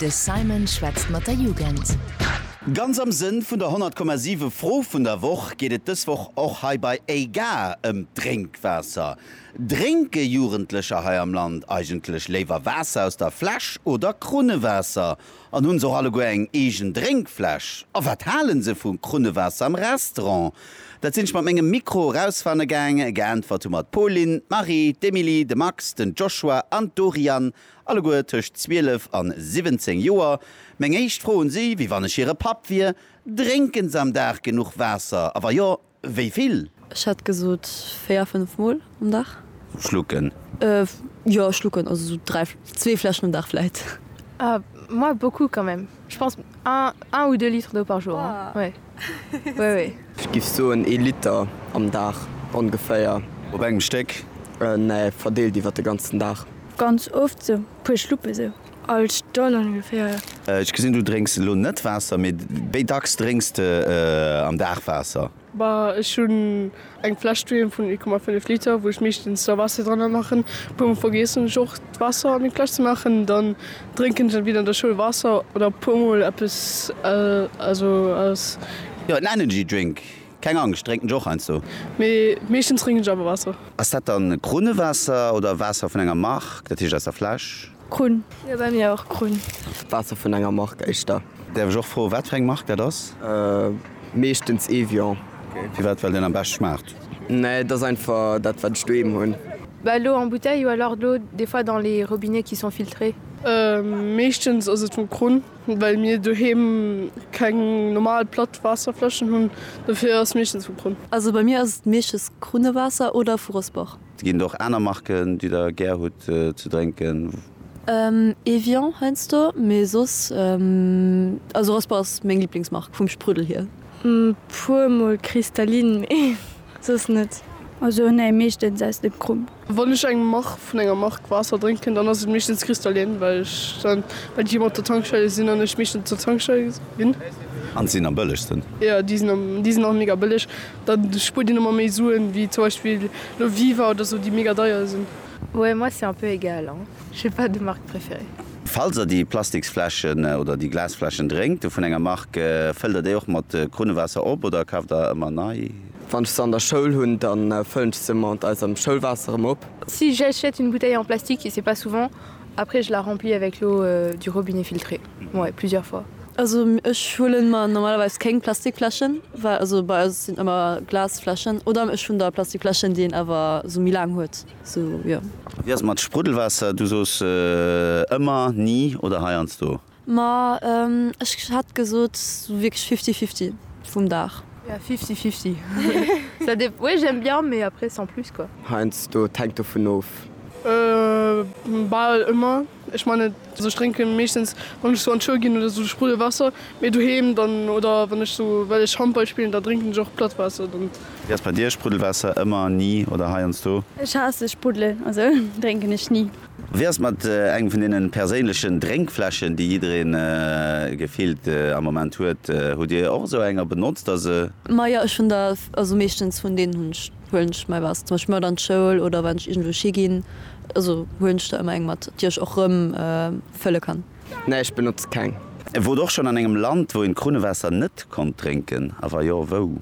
De Simon schwätzt mat der Jugend. Ganz am Sënn vun der 100,7 Fro vun der Woch geet et dës Woch och hei bei Ey Gare ëm d'Drénkwaasser. Drénke Jugendlecher hei am Land eigentlech léiwer Waasser aus der Fläsch oder Krunnewaasser? An hunn se och alleguer eng eegen Drénkfläsch? A wat halen se vum Krunnewaasser am Restaurant? Dat sinn ech mat mengem Mikro erausfanne gaang. Geäntwert hu mer d'Pauline, d'Marie, d'Emilie, de Max, den Joshua an d'Doriane, alleguer tëscht 12 an 17 Joer. Meng éischt Fro un si, wéi wann ech hire Papp wier, Drénken se am Dag genuch Waasser? A wa jo, Wéi vill? Ech hätt gesot véier, fënnef Mol um Dag. Schlucken? Jo, schlucken, also sou dräi, zwee Fläschen um Dag vläit. Moi, beaucoup quand même, je pense un ou deux litres d'eau par jour, oui, oui, oui. Ech géif soen ee Liter am Dag ongeféier. Op engem Stéck? Nee, verdeelt iwwer de ganzen Dag. Ganz oft, sou puer Schluppe sou. All Stonn ongeféier. Ech gesinn du drénks elo net Waasser, mee wéi dacks drénks de am Dag Waasser? Bah ech hunn eng Fläsch doheem vun 0,5 Liter wou ech meeschtens da Waasser dranner maachen. Puer mol vergiessen ech och d'Waasser an déng Fläsch ze maachen, dann drénken ech entweder an der Schoul Waasser oder puer mol eppes also aus. Jo en Energy Drink, keng Angscht, drénken ech och heiansdo. Mee meeschtens drénken ech awer Waasser. Ass dat dann Krunnewaasser oder Waasser vun enger Mark, dat heescht aus der Fläsch? Krunn. Jo bei mir och Krunn. Waasser vun enger Mark éischter. Däerf ech och froen wat fir eng Mark dat ass? Meeschtens Evian. Firwat? Well deen am bescht schmaacht? Nee et ass einfach dat wat ech doheem hunn. Bah lo en bouteille ou alors dlo des fois dans les robinets qui sont filtrés. Meeschtens ass et vum Krunn well mir doheem keng normal platt Waasserfläschen hunn dofir ass meeschtens vum Krunn. Also bei mir ass et meeschtens Krunnewaasser oder vu Rossbach. Et ginn och aner Marken déi der gär hutt ze drénken? Evian heiansdo, mee soss, also Raspa ass meng Liblingsmark vum Spruddel hier. Puer mol Cristalline, mee soss net. Also nee, meeschtens aus dem Krump. Wann ech eng Mark vun enger Mark Waasser drénken, dann ass et meeschtens Cristalline, well ech dann well déi ëmmer op der Tankstelle sinn an ech meeschtens op der Tankstelle sinn. An se sinn am bëllegsten. Jo, déi sinn am, déi sinn och mega bëlleg. Da spuert een emmer méi Suen, wéi zum Beispill lo Viva oder sou, déi mega deier sinn. Ouais, moi c'est un peu égal hein, j'ai pas de marque préférée. Falls der déi Plastiksfläschen oder déi Glasfläschen drénkt vun enger Marque, fëllt der déi och mat Krunnewaasser op oder kaaft der ëmmer nei? Wann ech se an der Schoul hunn, dann fëllen ech se mat eisem Schoulwaasser erëm op. Si j'achète une bouteille en plastique et c'est pas souvent, après je la remplis avec l'eau du robinet filtrée. Moai, plusieurs fois. Also ech huelen mer normalerweis kéng Plastikfläschen, well also bei eis sinn ëmmer Glasfläschen oder ech hunn da Plastikfläschen, déi een awer sou méi laang huet, sou jo. A wéi ass et mat Spruddelwaasser? Du soos ëmmer, ni oder heiansdo. Ma ech hätt gesot sou wierklech fifty fifty vum Dag. Ja, fifty fifty, ça dépend, oui j'aime bien, mais après sans plus quoi. Heiansdo, et hänkt dovun of. Bal ëmmer. Ech meine sou ech drénke meeschtens wann ech sou an d'Schoul ginn oder sou Spruddelwaasser, mee doheem dann oder wann ech sou well ech Handball spillen da drénken ech och platt Waasser dann. Wéi ass bei dir? Spruddelwaasser ëmmer, ni oder heiansdo? Ech haasse Spruddel, also drénken ech ni. Wéi ass et mat engem vun deenen perséinlechen Drénkfläschen déi jiddereen gefillt am Moment huet? Hutt dir och esou eng a benotzt der se? Majo ech hunn der, also meeschtens vun deenen hunn ech. Huelen ech mei was zum Beispill mat an d'Schoul oder wann ech iergendwousch higinn, also huelen ech der ëmmer eng mat, déi ech och rëm fëlle kann. Nee, ech benotze keng. E wort och schon an engem Land wou een d'Krunnewaasser net konnt drénken? A wa jo, wou?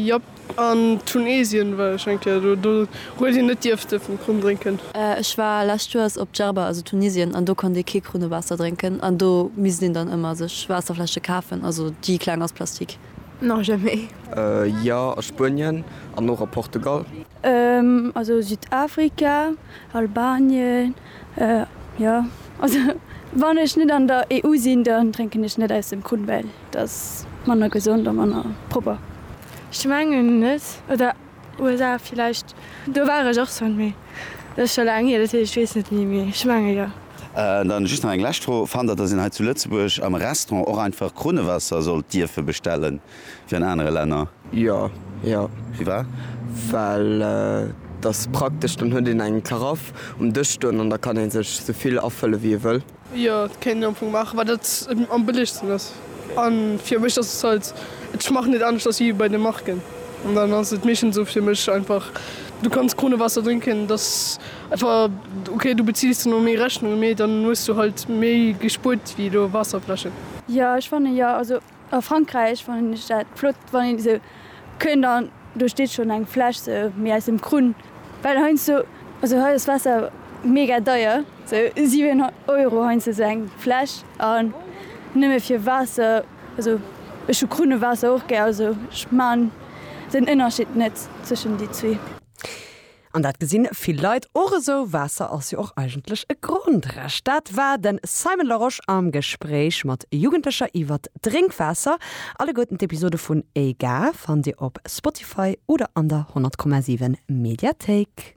Jop, an Tunesien war ech eng Kéier do, do huet een net dierfte vum Krunn drénken. Ech war lescht Joers op Djerba, also Tunisien, an do konnt ee kee Krunnewaasser drénken an do misst een dann ëmmer sech Waasserfläsche kafen, also déi kleng aus Plastik. Non jamais. Jo a Spuenien an och a Portugal. Also Südafrika, Albanien jo also wann ech net an der EU sinn dann drénken ech net aus dem Krunn well et ass manner gesond a manner propper. Ech mengen net oder USA villäicht, do war ech och schon, mee dat ass schon laang hier, dat heescht ech weess net méi, mee ech menge jo. An dann just nach eng lescht Fro, fannt der dass een hei zu Lëtzebuerg am Restaurant och einfach Krunnewaasser sollt dierfe bestellen wéi an anere Länner? Jo, jo. Firwat? Well et ass praktesch, dann huet een eng Karaff um Dësch stoen an da kann ee sech souvill afëlle wéi ee wëll. Jo dat kéint een am Fong maachen well dat am bëllegsten ass an fir mech ass halt ech maachen net anescht ass wéi bei de Marken an dann ass et meeschtens esou fir mech einfach du kanns Kronewasser drénken dass einfach ok du beziils dann och méi Rechnunge mee dann hues du halt méi gespuert wéi elo Waasserfläschen. Jo ech fanne jo also A Frankräich fannen ech dat flott, wann een esou kënnt an do steet schonn eng Fläsch sou méi aus dem Krunn, well heiansdo, also hei ass Waasser mega deier, sou 7 Euro heiansdo sou eng Fläsch an nëmme fir Waasser, also ech hu Krunnewaasser och gär, also ech man den Ënnerscheed net zwëschen déi zwee. An dat gesinn vill Leit och esou. Waasser ass jo och eigentlech e Grondrecht. Dat war den Simon Larosche am Gespréich mat Jugendlecher iwwert Drénkwaasser. Alleguerten d'Episode vun EGA fannt Dir op Spotify oder an der 100,7 Mediathéik.